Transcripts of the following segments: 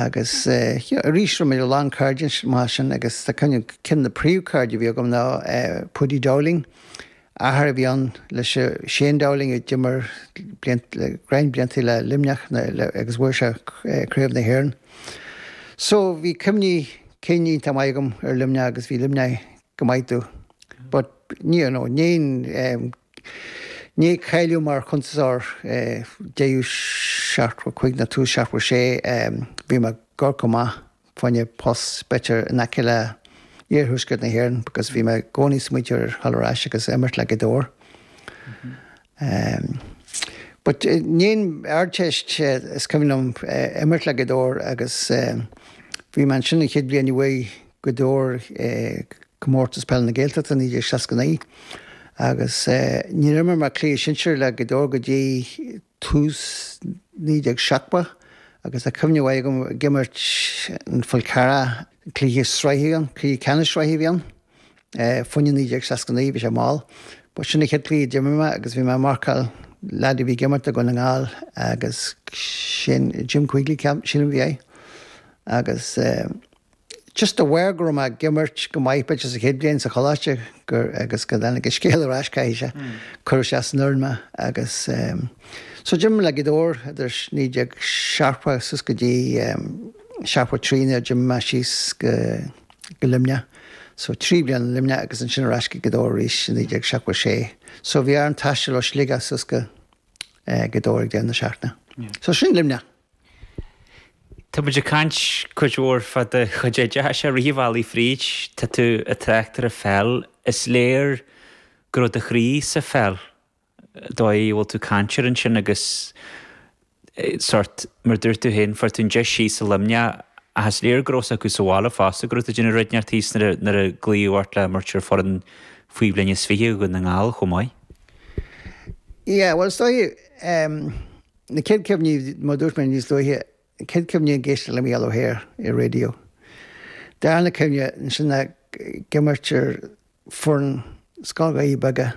Agus, you know, arís rinne mé a lán cairde mar sin agus tá cuimhne agam, ceann de na príomhchairde a bhí agam ná Paudie Dowling, athair a bhí ann le Shane Dowling a d'imir le roinnt blianta le Luimneach agus bhuaigh sé Craobh na hÉireann. So bhí cuimhní cinn iontach maith agam ar Luimneach agus bhí Luimneach go maith dom but ní, you know, níor, eh, Ní ag cailleadh mar chuntas ár dtéú searc chuig na tús searc 6 bhí mé gar go maith fainne post better in aice le iarthuaisceart na hÉireann because bhí mé gcónaí smaointeoir ar thall ar ais agus imirt le go dtóir but ní Ardteist is cuimhin liom imirt le go dtóir agus bhí mé ansin an chéad bhliain uaidh Gaoth Dobhair Comórtas Peile na Gaeltachta 1969 agus níor imir mé cluiche sinsear le Gaoth Dobhair go dtí tús 1970 agus tá cuimhne mhaith agam ag imirt in Falcarragh cluiche sraithe ann, cluiche ceannais sraithe a bhí ann, fá choinne 1969, bhí sé mall, but sin an chéad cluiche a d'imir mé agus bhí mé ag marcáil leaid a bhí ag imirt do Dhún na nGall agus sin Jim Quigley ceapaim, sílim a bhí é agus. just de bharr go raibh mé ag imirt go maith b'fhéidir an chéad bhliain sa choláiste gur agus go dtáinig an scéal ar ais caithfidh sé chuir siad ar an fhoireann mé agus em so d'imir mé le Gaoth Dobhair idir naoi déag seachtó suas go dtí em seachtó trí nuair a d'imigh mé síos go go Luimneach so trí bliana i Luimneach agus ansin ar ais go Gaoth Dobhair arís i naoi déag seachtó a sé so bhí orm taisteal ó Shligeach suas go eh Gaoth Dobhair ag deireadh na seachtaine. So sin Luimneach. Tá muid ag caint cuid mhór fá do chuid oideachais i rith an bhealaigh fríd, tá tú ag trácht ar an pheil. Is léir go raibh do chroí sa pheil, an dóigh a bhfuil tú ag caint air ansin agus sórt, mar a dúirt tú féin, fuair tú an deis síos i Luimneach ach is léir go raibh 's acu sa bhaile fosta go raibh tú ag déanamh rud inteacht thíos nuair a glaodh ort le imirt ar foireann faoi bhliain is fiche Dhún na nGall chomh maith. Yeah, bhuel 's dóigh, em, Na chéad cuimhní, mar a dúirt mé níos luaithe, na chéad cuimhní ag éisteacht le Micheál Ó hEithir ar an raidió. Darna cuimhne, ansin ag imirt ar foireann Scoil Dhoirí Beaga.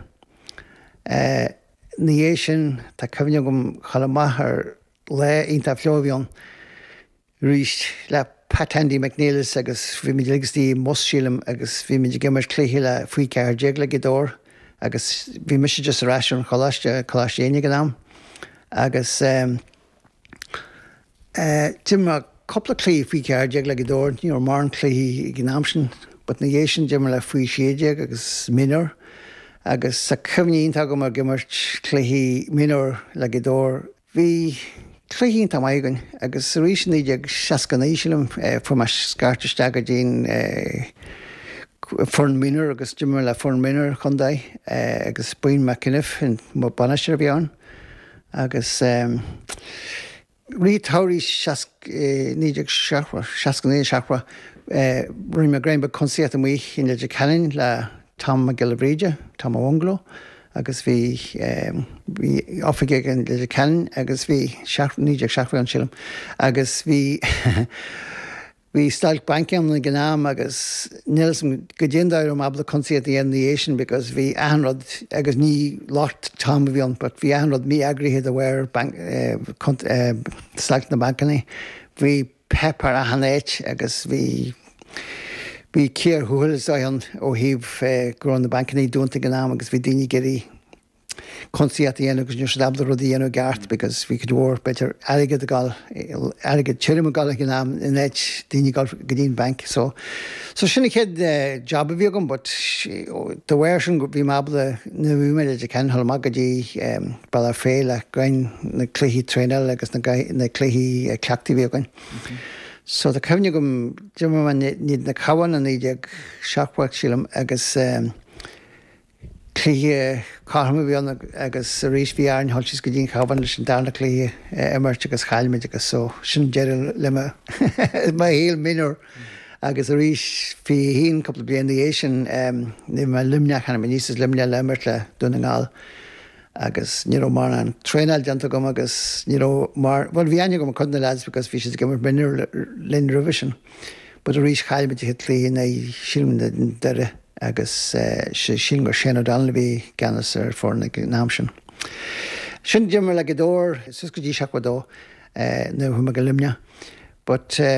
Ina dhiaidh sin, tá cuimhne agam chomh maith ar lá iontach fliuch a bhí ann. arís le Pat 'Andy' McNelis agus bhí muid uilig istigh i mbus, sílim, agus bhí muid ag imirt cluiche le faoi ceathair déag le Gaoth Dobhair agus bhí mise just ar ais ón choláiste, Coláiste Éinne ag an am, agus ehm eh d'imir cúpla cluichí faoi cheathair déag le Gaoth Dobhair, ní raibh mórán cluichí ag an am sin but na dhiaidh sin d'imir le faoi sé déag agus mionúr agus tá cuimhne iontach agam ag imirt cluichí mionúr le Gaoth Dobhair, Bhí cluichí iontach maith againn agus arís i 1969, sílim, fuair mé scairt isteach go dtí'n foireann minor agus d'imir mé le foireann minor an chontae agus Brian McEniff an bainisteoir a bhí ann agus rith an tsamhraidh seasc, 1969, seachtó, rinne mé greim beag cuntasaíocht amuigh i Leitir Ceanainn le Tom Mac Giolla Bhríde, Tom an Bhungaló, agus bhí bhí oifig aige i Leitir Ceanainn agus bhí seacht naoi déag seachtó a bhí ann sílim agus bhí bhí stailc bainc ann ag an am agus níl fhios agam caidé an dóigh a raibh mé ábalta cuntasaíocht a dhéanamh ina dhiaidh sin because bhí achan rud agus ní locht Tom a bhí ann but bhí achan rud mí-eagraithe de bharr bank eh stailc na mbancanna bhí páipéar achan áit agus bhí bhí cíor thuathail is dóigh ann ó thaobh go raibh na bancannaí dúnta ag an am agus bhí daoine ag iarraidh cuntasaíocht a dhéanamh agus ní raibh siad ábalta rudaí a dhéanamh i gceart because bhí cuid mhór b'fhéidir airgead ag dul airgead tirim ag dul ag an am in áit daoine ag dul go dtí'n banc so So sin an chéad job a bhí agam but dá bharr sin bhí mé ábalta nuair a bhí mé i Leitir Ceanainn a dhul amach go dtí Bealach Féich fá choinne na cluichí traenála agus na na cluichí cleachtaidh a bhí againn. So tá cuimhne agam d'imir mé in éadan an Chabháin i 1970 sílim agus Cluiche cothrom a bhí ann agus arís bhí orainn a dhul síos go dtí an Chabhán leis an darna cluiche a imirt agus chaill muid agus so sin deireadh le mo mo shaol mionúr agus arís faoi cheann cúpla bliain ina dhiaidh sin bhí mé i Luimneach tháinig mé aníos as Luimneach le imirt le Dún na nGall agus ní raibh mórán traenáil déanta agam agus ní raibh mar bhuel bhí aithne agam ar cuid na lads because bhí siad ag imirt mionúr linn roimhe sin. But arís chaill muid an cluiche in aghaidh sílim Doire agus sílim gur Shane O'Donnell a bhí i gceannas ar foireann ag an am sin. Ansin d'imir mé le Gaoth Dobhair suas go dtí seachtó a dó nuair a chuaigh mé go Luimneach but,